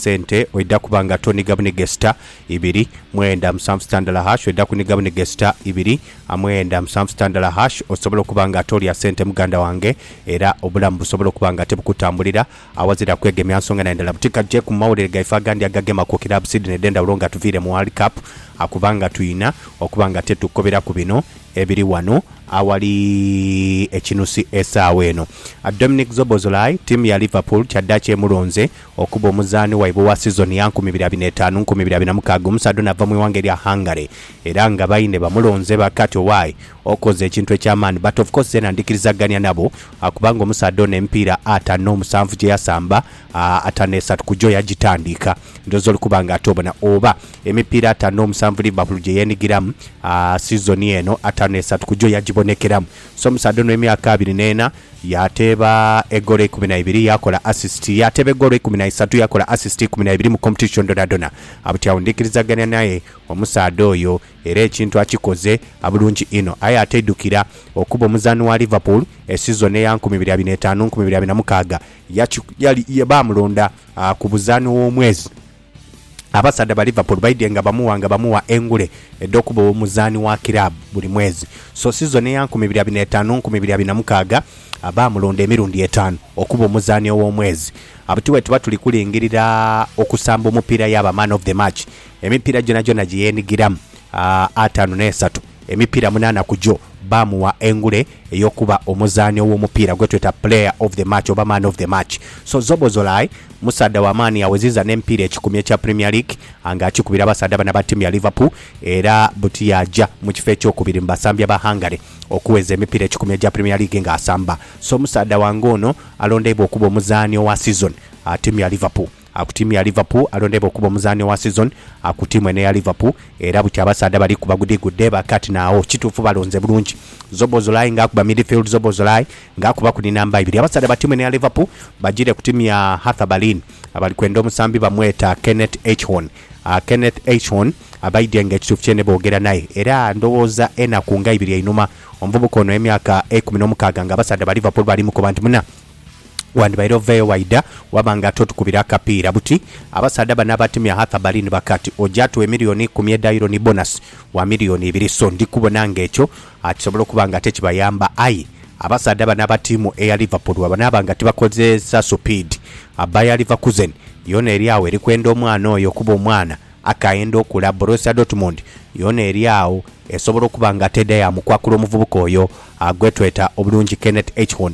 Sente oidha kuba nga toniga bunegesita ibiri mwenda musanvu sitandala hash oidha kuniga bunegesita ibiri amwenda musanvu sitandala hash osobole okuba nga tolya sente muganda wange era obulamu busobole okuba nga tebukutambulira awazira kwegemya nsonga na ndala butika je ku mawulire gaife agandi agagema ku kilabu side ne dhendhawulo nga tuviire mu world cup akuba nga tuyina okuba nga tetukobera ku bino ebiri wano awali ekinusi esaawa eno. Dominic Szoboszlai tiimu ya Liverpool kyaddaaki emulonze Okuba omuzaani waibwe owa sizoni ya nkumi ibiri abiri n'etaanu nkumi ibiri abiri na mukaaga, omusaadha ono ava mu ighanga erya Hungary era nga baine bamulonze bakati owaye okoze ekintu eky'amaani but of course zeena ndhikirizagania nabo kubanga omusaadha ono emipiira atano n'omusanvu gye yasamba, atano esatu ku gyo yagitandiika. Ndhooza oli kuba nga ate obona oba emipiira atano n'omusanvu Liverpool gye yeenigiramu sizoni eno, atano esatu ku gyo yagibonekeramu. So omusaadha ono emyaka abiri n'ena yaateeba egoolo eikumi na ibiri, yaakola assist. Yaateeba egoolo eikumi na isatu, yaakola assist ikumi na ibiri mu competition dhonadhona. Buti agho ndikirizagania naye omusaadha oyo era ekintu akikoze bulungi inho. Aye ate idukira, okuba omuzaani wa Liverpool e sizoni eya nkumi ibiri abiri n'etaanu, nkumi ibiri abiri na mukaaga, yaki, yali, ye, baamulonda ku buzaani w'omwezi. Abasaadha ba Liverpool baidhye nga bamuwa nga bamuwa engule edh'okuba omuzaani wa kiraabu buli mwezi. So sizoni eya nkumi ibiri abiri n'etaanu nkumi ibiri abiri na mukaaga baamulonda emirundi etaanu okuba omuzaani ow'omwezi. Buti bwetuba tuli kulingirira okusamba omupiira yaaba Man of the Match, emipiira gyonagyona gye yeenigiramu ataanu n'esatu, emipiira munaana ku gyo baamugha engule ey'okuba omuzaani ow'omupiira gwe tweta Player of the Match oba Man of the Match. So Szoboszlai musaadha wa maani yaweziza n'emipiira ekikumi ekya Premier League nga akikubira abasaadha bano aba ttiimu ya Liverpool era buti yaaja mu kifo ekyokubiri mu basambi aba Hungary okuweza emipiira ekikumi egya Premier League ng'asamba. So omusaadha wange ono alondeibwa okuba omuzaani owa sizoni aba ttiimu ya Liverpool. A Ku tiimu ya Liverpool, alondebwa okuba omuzaani owa sizoni a ku tiimu eno eya Liverpool era buti abasaadha bali ku bagudigudde ba Kati na Aho. Kituufu balonze bulungi Szoboszlai ng'akuba midfield Szoboszlai ng'akuba ku ni namba ibiri. Abasaadha ba tiimu eno eya Liverpool bajiire ku tiimu ya Hertha Berlin abali kwenda omusambi bamweta Kenneth Eichhorn. A Kenneth Eichhorn abaidhye nga ekituufu kyene boogera naye era ndowooza enaku nga ibiri einhuma, omuvubuka ono ow'emyaka eikumi n'omukaaga ng'abasaadha ba Liverpool bali mukoba nti muna, Wandibaire oveeyo waidha waba nga ate otukubira akapiira. Buti abasaadha bano abatemya Arthur bali ni bakati, oja tuwa emiliyoni ikumi edha Euro ni bonasi wa miliyoni ibiri. So ndi kubona nga ekyo kisobola okuba nga ate kibayamba. Aye abasaadha bano aba tiimu eya Liverpool bwebanaaba nga tibakozeesa supiidi, Bayer Leverkusen yoona eri agho eri kwenda omwana oyo kuba omwana akaenda okula. Borussia Dortmund yoona eri agho esobola okuba nga ate edha yaamukwakula omuvubuka oyo gwetweta obulungi Kenneth Eichhorn.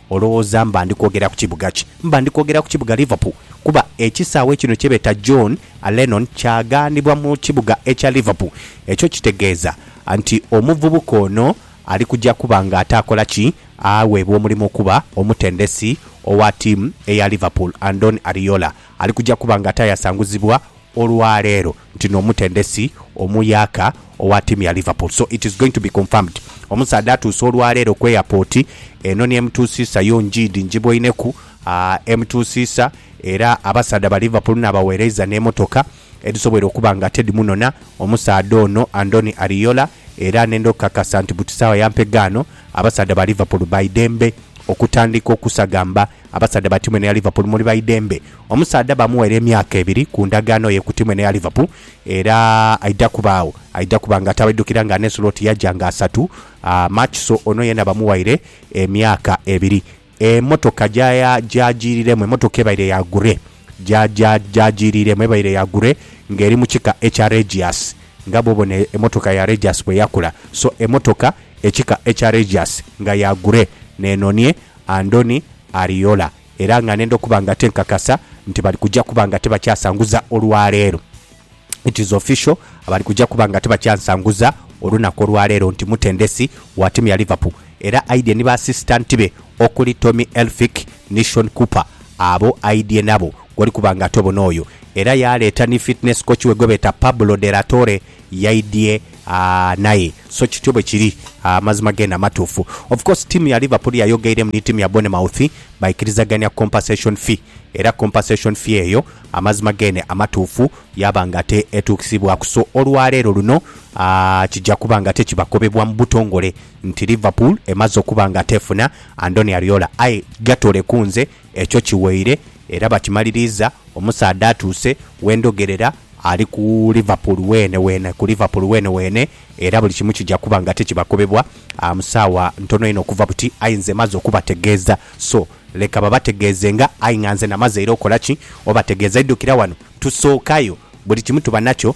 Olowooza mba ndi kwogera ku kibuga ki? Mba ndi kwogera ku kibuga Liverpool, kuba ekisaawe kino kye beeta John a Lennon kyaghanibwa mu kibuga ekya Liverpool. Ekyo kitegeeza nti omuvubuka ono ali kuja kuba nga ataakola ki? Aweebwa omulimu okuba omutendesi owa tiimu eya Liverpool. Andoni Ariola ali kuja kuba nga ataayasanguzibwa olwa leero ntino omutendesi omuyaaka owa tiimu ya Liverpool so it is going to be confirmed omusaadha atuuse olwa leero ku airport eno ni emutuusiisa yo njiidi njiboineku aa emutuusiisa era abasaadha ba Liverpool nabawereiza ne motoka edhisobweire okuba nga tedhimunona omusaadha ono Andoni Ariola era nenda okukakasa nti buti saawa ya mpegaano abasaadha ba Liverpool baidembe okutandika okusagamba Abasaadha ba tiimu eno eya Liverpool muli ba idembe omusaadha baamuweera emyaka ebiri ku ndagaano ye ku tiimu eno eya Liverpool era aidha kubaagho aidha kuba nga atabaidhukira nga Arne Slot yaja nga asatu March so ono yeena bamuwaire emyaka ebiri. Emotoka gyagyiiriremu, emotoka ebaire ya gure gyagyiiriremu ebaire ya gure ng'eri mu kika ekya Regius nga bw'obona emotoka ya Regius bweyakula so emotoka ekika ekya Regius nga ya gure n'enonie Andoni, Ariola era nga nenda okuba nga tenkakasa nti bali kuja kuba nga tebakyasanguza olwaleero. It is official, abali kuja kuba nga tebakyansanguza olunaku olwaleero nti mutendesi wa tiimu ya Liverpool era aidhye ni ba asisitanti be okuli Tommy Elphick ni Shaun Cooper abo aidhye nabo gwoli kuba nga ate obona oyo era yaaleeta ni fitness coach we gwebeeta Pablo de la Torre yaidhie naye so kityo bwekiri amazima gena matuufu of course tiimu ya Liverpool yayogeiremu ni tiimu ya Bournemouth baikirizagania compensation fee era compensation fee eyo amazima gene amatuufu yaba nga ate etuukisibwaku so olwaleero luno kija kuba nga ate kibakobebwa mubutongole nti Liverpool emaze okuba nga ate efuna Andoni Ariola aye gatoleku nze Ekyo kiweire era bakimaliriiza, omusaadha atuuse we ndhogerera ali ku Liverpool weene weene, ku Liverpool weene weene, era buli kimu kija kuba nga tikibakobebwa mu saawa ntono inho okuva buti, aye nze maze okubategeeza, so leka babategeezenga, aye nga nze namaze era okola ki? Obategeeza. Idukira wano, tusookayo, buli kimu tuba nakyo,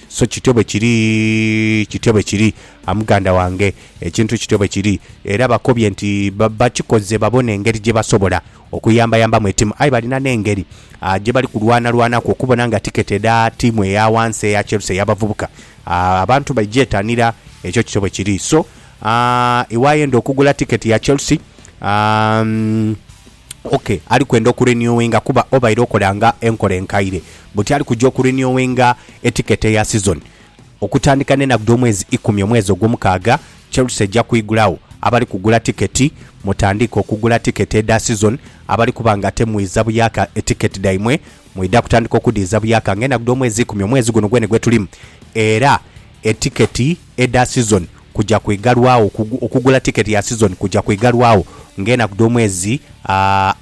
So kityo bwe kiri, kityo bwe kiri, a muganda wange. Ekintu kityo bwe kiri. Era bakobye nti ba, bakikoze babone engeri gye basobola okuyambayambamu etimu. Aye balina n'engeri a, gye bali kulwanalwanaku okubona nga tiketi edha tiimu eya wansi eya Chelsea ey'abavubuka a, abantu bagyetanira. Ekyo kityo bwe kiri. So a, iwe ayenda okugula tiketi ya Chelsea, a, Ok, ali kwenda oku renewinga kuba obaire okola nga enkola enkaire. Buti ali kuja oku renewinga eticket eya season. Okutandika nenaku dhomwezi ikumi omwezi ogwomukaaga, Chelsea eja kwigulagho abali kugula ticket. Mutandiike okugula ticket edha season abali kuba nga temwidha buyaka eticket dhaimwe mwidha kutandika okudhiidha buyaka nga enaku dhomwezi ikumi omwezi guno gwene gwetulimu era eticket edha sizoni kuja kwigalwagho, okugula tiketi ya sizoni kuja kwigalwagho ng'enaku dh'omwezi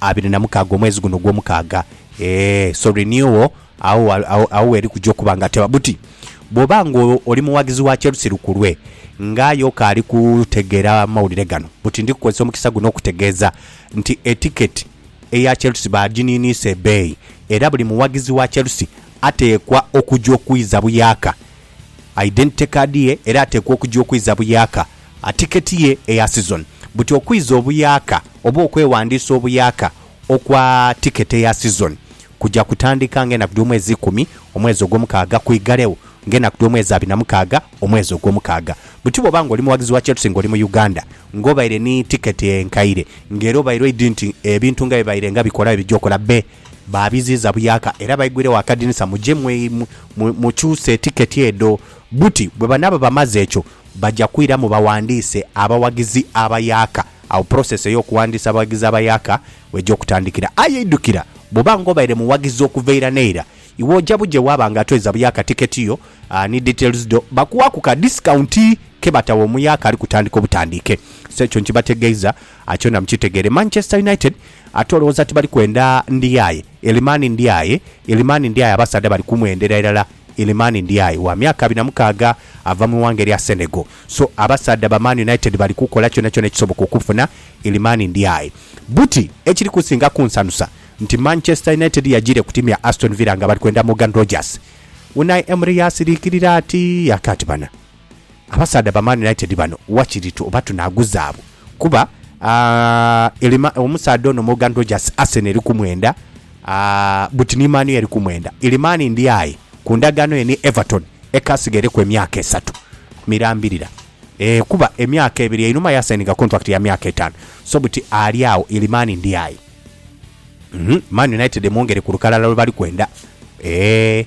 abiri na mukaaga, omwezi guno ogw'omukaaga, ee, so renewal agho, agho gh'eri kuja okuba nga teba. Buti bw'oba ng'oli mughagizi wa Chelsea lukulwe, ng'aye okaali kutegeera mawulire gano, buti ndi kukozesa omukisa guno okutegeeza nti etiketi eya Chelsea baaginiiniisa ebeeyi era buli mughagizi wa Chelsea ateekwa okuja okwiza buyaaka Identity Card ye era ateekwa okuja okwiza buyaaka a ticket ye eya season. Buti okwiza obuyaaka oba okwewandiisa obuyaaka okwa ticket eya season kuja kutandika nga enaku dh'omwezi ikumi omwezi ogw'omukaaga kwighalegho nga enaku dh'omwezi abiri na mukaaga omwezi ogw'omukaaga. Buti bw'oba nga oli mughagizi wa Chelsea nga oli mu Uganda nga obaire ni ticket enkaire nga era obaire oidhi nti ebintu nga bibaire nga bikola bye bija okola be baabiziiza buyaka era baigwiregho akadinisa muje mukyuse tiketi edho buti bwebanaaba bamaze ekyo baja kwiramu baghandiise abawagizi abayaka agho process ey'okughandiisa abawagizi abayaka weja okutandikira aye idhukira bwoba nga obaire muwagizi okuva eira n'eira iwe oja buje waaba nga atweza buyaka tiketi yo ni details dho bakuwaku ka discount kebatagha omuyaka alikutandika obutandiike so ekyo nkibategeiza kyona mukitegeere Manchester United Ate olowooza ti bali kwenda ndi aye? Elimani ndi aye, Elimani ndi aye abasaadha bali kumwendera irala Elimani ndi aye wa myaka abiri na mukaaga ava mu ighanga erya Senegal so abasaadha ba Man United bali kukola kyonakyona ekisoboka okumufuna Elimani ndi aye Buti ekiri kusinga kunsanusa nti Manchester United yajiire ku tiimu ya Aston Villa nga bali kwenda Morgan Rogers Unai Emery yaasiriikirira ati, Yaka ati, Bana. Abasaadha ba Man United bano wakiri tu oba tunaaguzaabwo kuba aah omusaadha ono Morgan Rogers Arsenal eri kumwenda aah but ni Man U eri kumwenda. Ilimani ndi aye ku ndagaano ye ni Everton ekasigaire ku emyaka esatu mirambirira eeh kuba emyaka ebiri einhuma yasayininga contract ya myaka etaanu so buti ali agho Ilimani ndi aye. Uhmm Man United emwongere ku lukalala lwe bali kwenda eeh.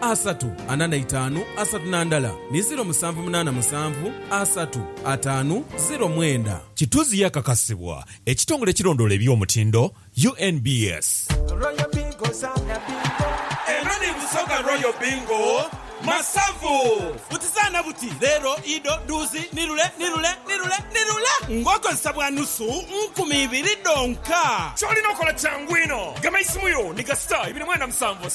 asatu ana na itaanu asatu na ndala ni ziro musanvu munaana musanvu asatu ataanu ziro mwenda. Kituzi yakakasibwa ekitongole ekirondoola eby'omutindo, UNBS. Royal Bingo zaana bingo. Eno ni Busoga Royal Bingo Masavu. Buti zaana buti, leero, ido, duuzi, ni lule, ni lule, ni lule, ni lule ng'okozesa bwa nusu nkumi ibiri dhonka. Ky'olina okola kyangu inho. Gema eisimu yo ni ga star ibiri mwenda musanvu.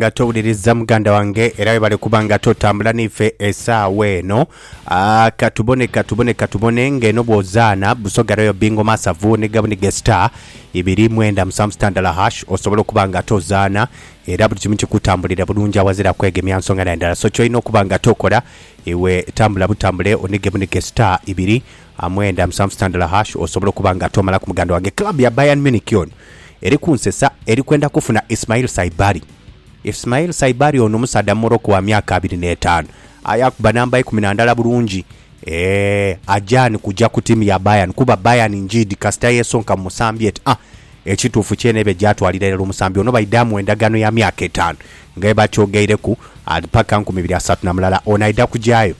nga towuliriza muganda wange era webale kuba nga totambula naife esaawa eno Ah, katubone katubone katubone ng'eno bwozaana busoga royo bingo masavu ne gabunige star ibiri mwenda musanvu sitandala hash osobola okuba nga tozaana era buli kimu kikutambulira bulungi awazira kwegemya nsonga na ndala so kyolina okuba nga tokola iwe tambula butambule onige bunige star ibiri A mwenda musanvu sitandala hash osobola okuba nga tomala ku muganda wange club ya Bayern Munich yono eri kunsesa eri kwenda kufuna Ismail Saibari. Ismail Saibari ono musaadha mu Morocco wa myaka abiri n'etaanu aye akuba namba ikumi na ndala bulungi eeh ajaani kuja ku tiimu ya Bayern kuba Bayern njiidi kasita yesonka mu musambi eti ah Ekituufu kyene ebe gyatwalira irala omusambi ono baidaamu endagaano ya myaka etaanu nga bwebatyogeireku ali paka nkumi ibiri asatu na mulala ono aidha kugyayo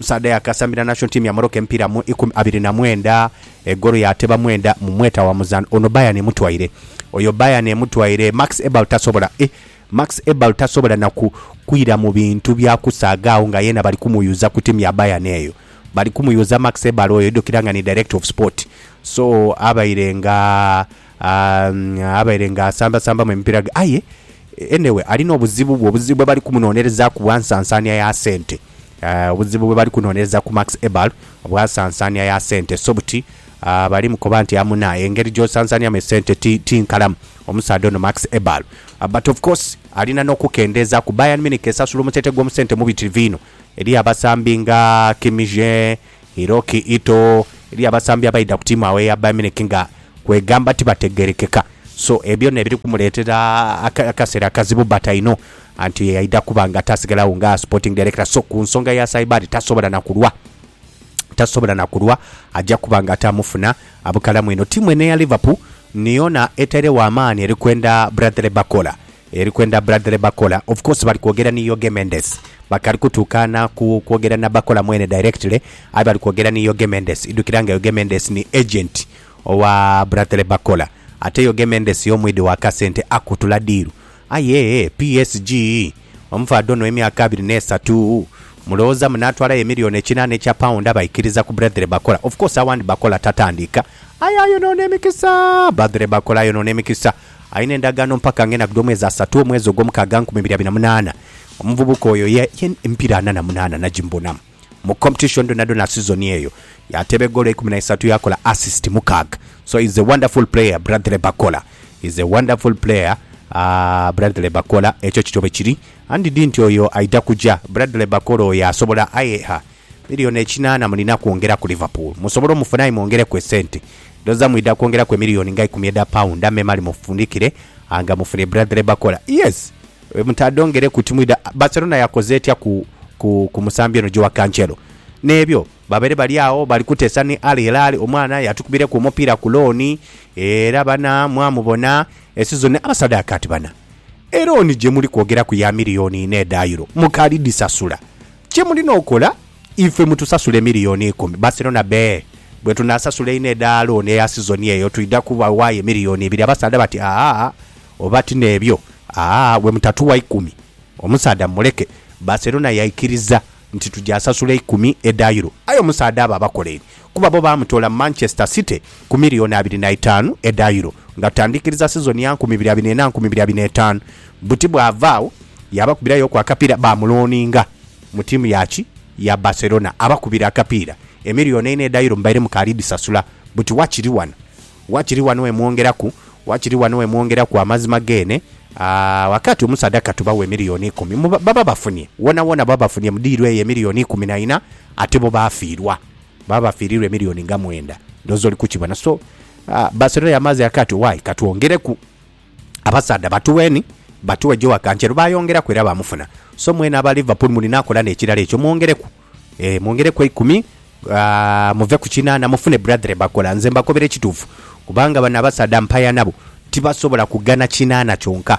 Musaadha yaakasambira national team ya Morocco emipiira mu ikumi abiri na mwenda, egoolo yaateba mwenda mu mweta wa muzaanho. Ono Bayern emutwaire. Oyo Bayern emutwaire. Max Eberl tasobola, eh, Max Eberl tasobola na ku, kwira mu bintu bya kusaaga agho nga yeena bali kumuyuza ku tiimu ya Bayern eyo. Bali kumuyuza Max Eberl oyo idhukira nga ni director of sport. So, abaire nga Aah abaire nga asamba sambamu emipira ghe aye anyway alina obuzibu bwe obuzibu bwe bali kumunonherezaku bwa nsansanhia ya sente aah obuzibu bwe bali kunonherezaku Max Eber obwa nsansanhia ya sente so buti aah bali mukoba nti amuna engeri gyo sansanhiamu esente ti ti nkalamu omusaadha ono Max Eber but of course alina no kukendezaku Bayern Munich esasula omusente gwo musente mubitirivu inho eriyo abasambi nga Kimmich eeh. Iroqi ito elya basambi abaidha ku tiimu agho eya Bayern Munich nga kwegamba tibategerekeka so ebyo nebiri kumuletera akaseera akazibu but I know anti aidha kuba nga tasigalagho nga sporting director so ku nsonga ya Saibari tasobola na kulwa tasobola na kulwa aja kuba nga ate amufuna abukalamu eno. Tiimu eno eya Liverpool ni yona etairegho amaani eri kwenda Bradley Bacola. Eri kwenda bradhre Bakola of course bali kwogera ni Yoge Mendes bakali kutuukaana ku kwogera na Bakola mwene directly aye bali kwogera ni Yoge Mendes idhukira nga Yoge Mendes ni agent owa bradhre Bakola ate Yoge Mendes y'omwidhi wa kasente akutula diiru aye PSG omufaadha ono ow'emyaka abiri n'esatu mulowooza munaatwalayo emillion ekinaana ekya pound abaikiriza ku bradhre Bakola of course awandi Bakola tatandiika aye ayonoona emikisa bradhre Bakola ayonoona emikisa. Alina endagaano mpaka nga enakudwa omwezi asatu, omwezi ogwomukaaga nkumi ibiri abiri na munaana. Omuvubuka oyo ye ye empira ana na munaana najimubonamu mu competition dhonadhona sizoni eyo. Yateeba egoolo eikumi na isatu yakola assist mukaaga so is a wonderful player Bradley Bakola is a wonderful player aah Bradley Bakola ekyo kityo bwekiri and didn't oyo aidha kuja Bradley Bakola oyo asobola aye ha. Milioni ekinaana mulina kwongera ku Liverpool musobole omufune aye mwongereku esente. Ndhoza mwidha kwongeraku emilioni nga ikumi edha pound amemale mufundikire anga mufune Bradley Bacola. Yes mutadhongereku timwidha Barcelona yakoze etya ku ku ku musambi ono Joao Cancelo? N'ebyo babaire bali agho bali kuteesa ni Al Hilal omwana yatukubireku omupiira ku looni era bana mwamubona esizoni abasaadha yakaati bana. Elooni gye muli kwogeraku ya milioni ina edha Euro mukalidhisasula Kye mulina okola, ife mutusasule miriyoni ikumi. Barcelona be, Bwetunaasasula einho edha looni eya sizoni eyo, twidha kubawaayo emiriyoni ibiri. Abasaadha bati, Aa, oba ti n'ebyo, aa, bwe mutatuwa ikumi, omusaadha mumuleke. Barcelona yaikiriza nti tugyasasula ikumi edha Euro. Aye omusaadha abo abakoleire kuba bo baamutoola mu Manchester City ku miliyooni abiri na itaanu edha Euro nga tutandikiriza sizoni ya nkumi ibiri abiri ena nkumi ibiri abiri na etaanu buti bwava agho yaabakubirayooku akapiira baamuloaninga mu ttiimu ya ki ya Barcelona abakubire akapiira emiliyooni eina edha Euro mubaire mukaali dhisasula buti wakiri wano wakiri wano we mwongeraku wakiri wano we mwongeraku amazima geene aah wakaati omusaadha katubawe emiliyooni ikumi mu baba bafunye woonawoona baba bafunye mu diiru eyo emiliyooni ikumi na ina ate bo baafiirwa. baba bafiirirwa emiliyoni nga mwenda. Ndhooza oli kukibona. So, Barcelona yamaaze yaka ati, Why, ka twongereku abasaadha batuweni, batuwe Joao Cancelo. Baayongeraku era baamufuna. So, mwena aba Liverpool mulina akola n'ekirala ekyo, mwongereku. Ee, mwongereku eikumi, muve ku kinaana, mufune Bradley Barcola. Nze mbakobera ekituufu, kubanga bano abasaadha mpaya nabo, tibasobola kugana kinaana kyonka.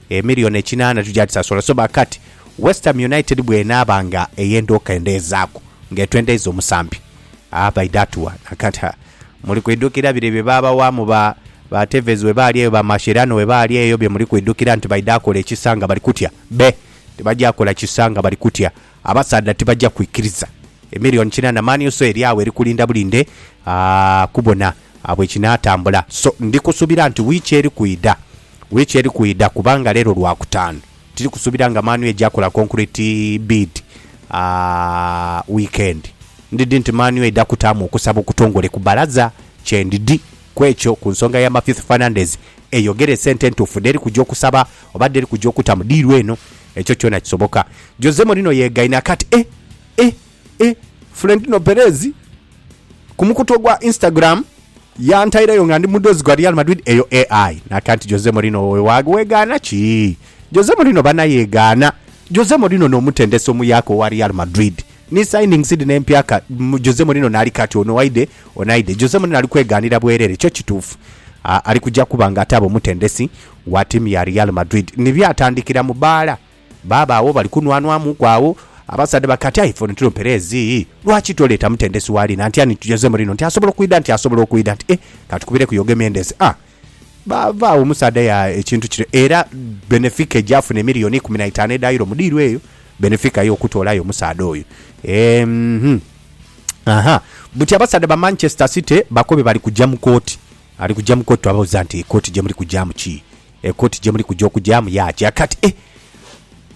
Emillion ekinaana tugyadhisasola so ba kati Westham United bw'enaaba nga eyenda okendeezaaku nga etwendeiza omusambi, aa baidha atuwa na kati. Ha, muli kwidhukira bire bye baabawaamu ba, ba Tevez bwe baali eyo, ba Mascherano bwe baali eyo, bye muli kwidhukira nti baidha kola ekisa nga bali kutya? Be! Tibagya kola kisa nga bali kutya. Abasaadha tibaja kwikiriza. Emillion kinana mani oso eri agho eri kulinda bulinde aah kubona bwekinatambula so ndi kusubira nti wiiki eri kwidha wiiki eri kwidha kubanga lero lwakutaanu tiri kusubira nga mani eja kola concrete bid aah weekend ndidi nti mani eidha kutaamu okusaba okutongole ku balaza kyendidi kwekyo ku nsonga ya Mathith Fernandez eyogere esente entuufu dheri kuja okusaba oba dheri kuja okutamu diiru eno Ekyo kyona kisoboka. Jose Mourinho yegaine aka ati, Eh, eh, eh, Florentino Perez ku mukutu ogwa Instagram yantaireyo nga ndi mudhozi gwa Real Madrid, eyo AI. Naka nti, Jose Mourinho wowe wegaana ki? Jose Mourinho bana yegaana. Jose Mourinho n'omutendesi omuyaaka owa Real Madrid, ni signings dhino empyaka, Jose Mourinho naali kati ono aidhe, ono aidhe. Jose Mourinho ali kwegaanira bwerere. Kyo kituufu, ali kuja kuba nga ataaba omutendesi wa tiimu ya Real Madrid ni byatandikira mu bbaala, baaba agho bali kunwanwamuuku agho, abasaadha bati, Ati aye ife ono tuli mu Perez, lwaki toleeta mutendesi wa Lina nti ani? Nti Jose Mourinho nti asobola okwidha, nti asobola okwidha, nti eh, ka tukubireku Jorge Mendes. A, baava agho omusaadha ya ekintu kire, era Benefica egyafuna emiliyoni ikumi na itaanu edha Euro mu diiru eyo, Benefica yo okutoolayo omusaadha oyo. Eehh, aha, buti abasaadha ba Manchester City bakobe bali kugya mu kooti Ali kuja mu kooti twababuza nti ekooti jemuli kujamu ki? Ekooti jemuli kuja okujamu ya ki? Kati e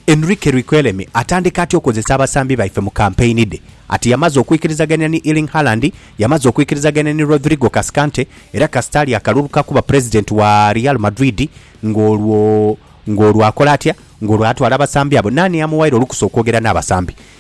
Enrique Riquelme atandika atya okozesa abasambi baife mu kampeyini dhe? Ati yamaze okwikirizagania ni Erling Haaland, yamaze okwikirizagania ni Rodrigo Cascante era kasita alya akalulu ka kuba pulezidenti wa Real Madrid ng'olwo ng'olwo akola atya? Ng'olwo atwala abasambi abo? Naani amuwaire olukusa okwogera n'abasambi?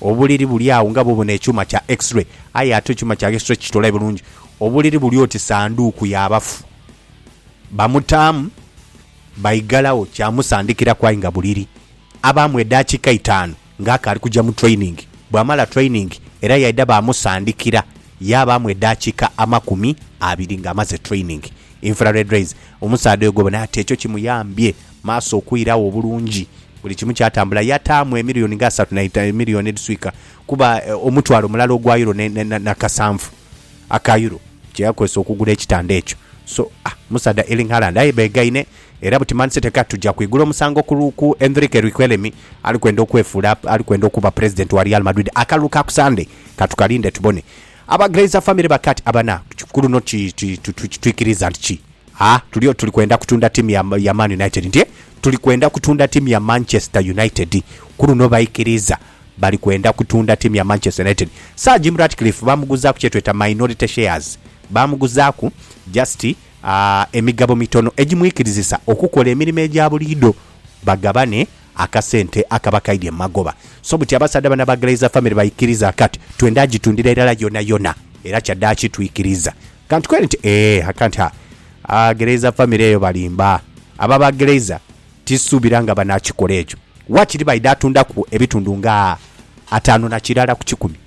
Obuliri buli agho nga bwo bona ekyuma kya X-ray, aye ate ekyuma kya X-ray kikitolayo bulungi. Obuliri buli oti sanduuku ya bafu. Bamutaamu, baigalagho kyamusandikiraku aye nga buliri. Abaamu edaakiika itaanu nga akaali kuja mu training. Bwamala training era yaidha baamusandikira yaabaamu edaakiika amakumi abiri ng'amaze training. infrared rays, omusaadha oyo gwebona ati ekyo kimuyambye maaso okwiragho obulungi buli kimu kyatambula yataamu emiliyoni nga asatu na itaanu, emiliyoni edhiswika kuba omutwalo mulala ogwa Euro ne na kasanvu aka Euro kye yakozesa okugula ekitanda ekyo. So ah omusaadha Erling Haaland aye beegaine era buti Man City kati tuja kwigula omusango ku ku Enrique Riquelme ali kwenda okwefuula ali kwenda okuba Pulezidenti wa Real Madrid akalulu ka ku Sande. Ka tukalinde tubone. Aba Glazer famire ba Kat abana ku luno twikiriza nti ki a tuli oti tuli kwenda kutunda tiimu ya Man United nti e tuli kwenda kutunda tiimu ya Manchester United ku luno baikiriza bali kwenda kutunda tiimu ya Manchester United. Sir Jim Ratcliffe baamuguzaaku kye tweta minority shares, baamuguzaaku just a emigabo mitono egimwikirizisa okukola emirimo egya buliidho bagabane Akasente akaba kaidhye mu magoba, so buti abasaadha bano aba Glazer Family baikiriza kati twendha agitundhira irala yonayona era kyadhaaki twikiriza. Kantu kweni nti, Eeh, akanti ha, aa Glazer Family eyo balimba. Abo aba Glazer tisuubira nga banaakikola ekyo. Waakiri baidha atundhaku ebitundu nga ataanu na kirala ku kikumi.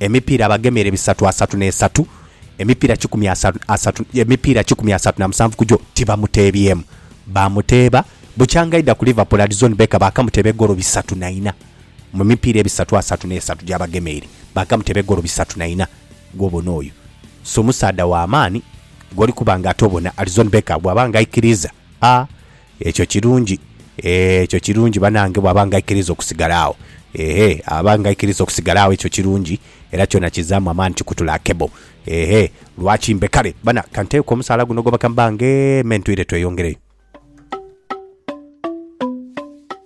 Emipiira abagemera ebisatu asatu n'esatu, emipiira kikumi asatu, emipiira kikumi asatu na musanvu ku gyo tibamuteebyemu. Baamuteeba bukyanga aidha ku Liverpool, Alisson Becker baakamuteeba egoolo bisatu na ina. Mu mipiira ebisatu asatu n'esatu gy'abagemeire, baakamuteeba egoolo bisatu na ina. Gw'obona oyo si musaadha wa maani? Gw'oli kuba ng'ate obona Alisson Becker bw'aba ng'aikiriiza? A, Ekyo kirungi, ekyo kirungi banange bwaba nga aikiriza okusigala agho. Ehe, aba nga aikiriza okusigala agho ekyo kirungi, era kyona kizamu amaani kikutula akebo. Ehe, lwaki mbe kale. Bana, ka nteeku omusaala guno gwebaka mbange me ntwire tweyongereyo.